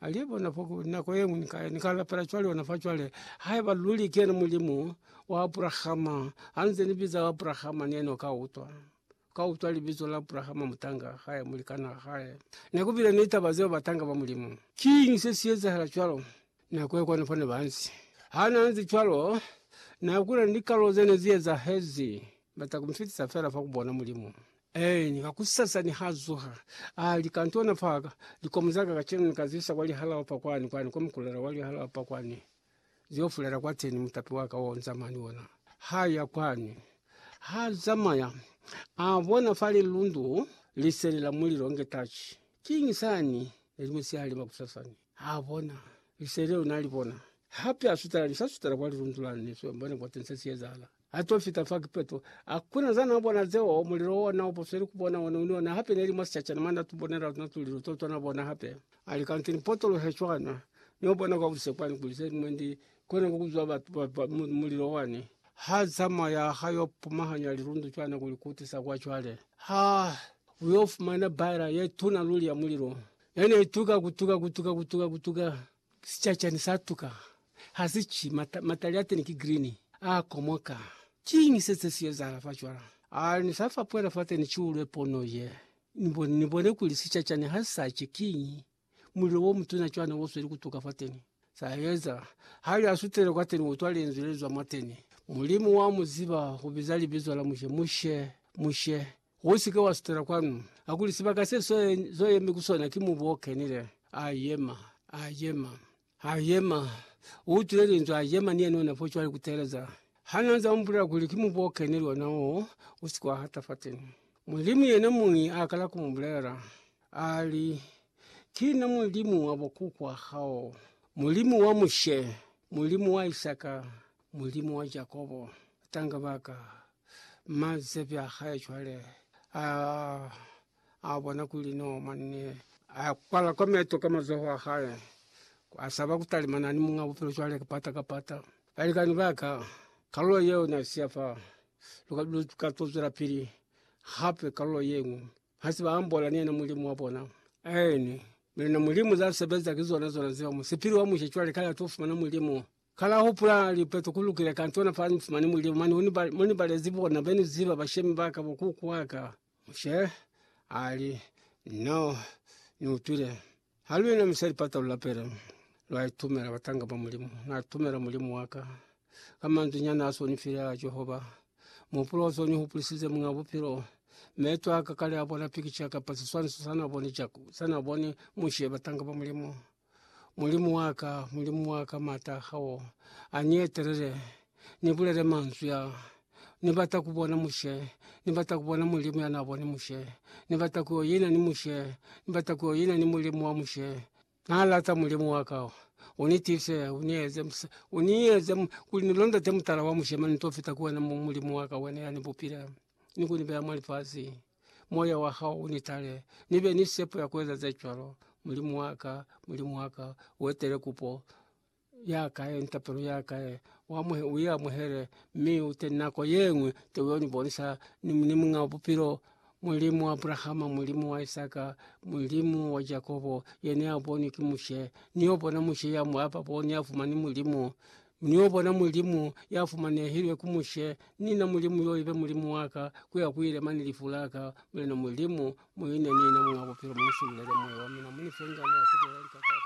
Alie bona foku nako yengwe nika nika lapela cwale ona fa cwale haiba luli ke yena Mulimu wa Abrahama hanze ni biza Abrahama ni yena ka utwa ka utwa libizo la Abrahama mutanga hae mulikana hae ne kubile ni taba zeo batanga ba Mulimu. Kiñi se si ezahala cwalo? Nako ye kwana fane banzi hana nzi cwalo na kuna ni kalo zene zi ezahezi bata kumfitisa fela fa ku bona Mulimu. Eeni, kakusasa nihazuha, alika, Ntona Parker, likomo zaka kacenu nikazisa kwa lihalao pa kwani, kwani kwa mukulela wa lihalao pa kwani, ziofulela kwateni, mutapi waka o nzamani ona. Haya kwani. Hazamaya, abona fa lilundu liseli la mulilo nge tachi. Kiñi sani? Nelimusihali makusasa ni. Abona. Liseli leo nalibona. Hape asutela, nisasutela kwa lilundu lani, niswembone kwateni sesiyezahala. A to fita fa kipeto, a kuna za na bona zeo, mulilo ona u posweli ku bona one uni ona hape ne li mwa sicacana mwa na tu bonela tuna tulilo to tona bona hape. A li, Kanti ni potolohe cwana, ni yo bona kwa bushe kwani kuli ze ñwi ndi kona ku kuzwa batu ba, ba, mu, mulilo wani ha zamaya ha yo pumahanya lilundu cwana ku li kutisa kwa cwale. Ha u yo fumana baela ye tuna luli ya mulilo, ye ne i tuka, ku tuka, ku tuka, ku tuka, ku tuka. Sicacani sa tuka, ha si ci, mata, matali a teni ki green, a komoka. Kiñi se se si ezahala fa cwala? A ni sa fapwela fateni kiulwe pono ye, ni bone, ni bone kuli sicacani ha si sa ci. Kiñi? Mulilo wo mutuna cwani wo sweli ku tuka fateni. Sa eza, hali a sutele kwateni, utwa Linzwi lezwa mwateni. Mulimu wa mu ziba, u biza libizo la Mushe, Mushe, Mushe. Usike wa sutela kwanu. Hakuli sibaka se zo yemi ku sona ki mubu o kenile. A yema. A yema. A yema. U utwile linzwi, a yema ni yena ona fo cwale kuteeleza. Ha na za umbulela kuli ki mubu o kenile ona wo, usike wa hata fateni. Mulimu yena muñi a kala ku mu bulela. A li, Ki na Mulimu wa bo kukwa hao, Mulimu wa Mushe, Mulimu wa Isaka, Mulimu wa Jakobo. Tanga baka. Mazebi a hae cwale a, a bona kuli no mwanne a kwala kwa meto ka mazoho a hae, a saba ku talimana ni Muñ'a Bupilo cwale kapata kapata. Balikani ba ka, kalulo yeo na siya fa, lu, lu ka to zwela pili hape kalulo ye ñwi. Ha se ba ambola ni yena Mulimu wa bona. Aeni, mi luna Mulimu za sebeza ki zona zona zeo. Musipili wa mushe cwale kale a to fumana Mulimu. Ka la hupula lipeto ku lukile kantona fa ni fumani mulimu mane mo ni balezi bona be ni ziba bashemi ba ka bo kuku wa ka. Mushe a li, Na ni utwile ha lu inamisa lipata lu lapele, lwa itumela batanga ba Mulimu. Na itumela Mulimu wa ka ka manzwi nyana a s'o ni file a Jehova. Muhupulo o s'o ni hupulisize Muñ'a Bupilo. Meto a ka kale a bona pikica kapa siswaniso sa n'a boni Mushe, batanga ba Mulimu. Mulimu wa ka, Mulimu wa ka, m'ata a hao a ni etelele, ni bulele manzwi a, Ni bata ku bona Mushe, ni bata ku bona Mulimu ya n'a boni Mushe, ni bata ku yo ina ni Mushe, ni bata ku yo ina ni Mulimu wa Mushe. N'a lata Mulimu wa ka, u ni tiise, u ni eze, u ni eze kuli ni londote mutala wa Mushe, mane ni t'o fita ku wena, Mulimu wa ka, wena ya ni bupile ni ku ni beya mwa lifasi. moya wa hao u ni tale, ni be ni sepo ya ku eza ze cwalo. Mulimu wa ka, Mulimu wa ka, u etele kupo ya ka ye ni tapelo ya ka ye, u i amuhele, mi u te nako ye ñwi te u yo ni bonisa ni Muñ'a Bupilo, Mulimu wa Abrahama, Mulimu wa Isaka, Mulimu wa Jakobo, yena ya bonwi ki Mushe. Ni yo bona Mushe ya ba bo ni ya fumani Mulimu. Niyo bona Mulimu ya fumanehilwe ku Mushe, ni na Mulimu yo ibe Mulimu waka, kuya kuile mane lifu laka, Mulena Mulimu, muine nina Muñ'a Bupilo, munisubulele moyo wa mina, munifengane ya kubela lika kaufela.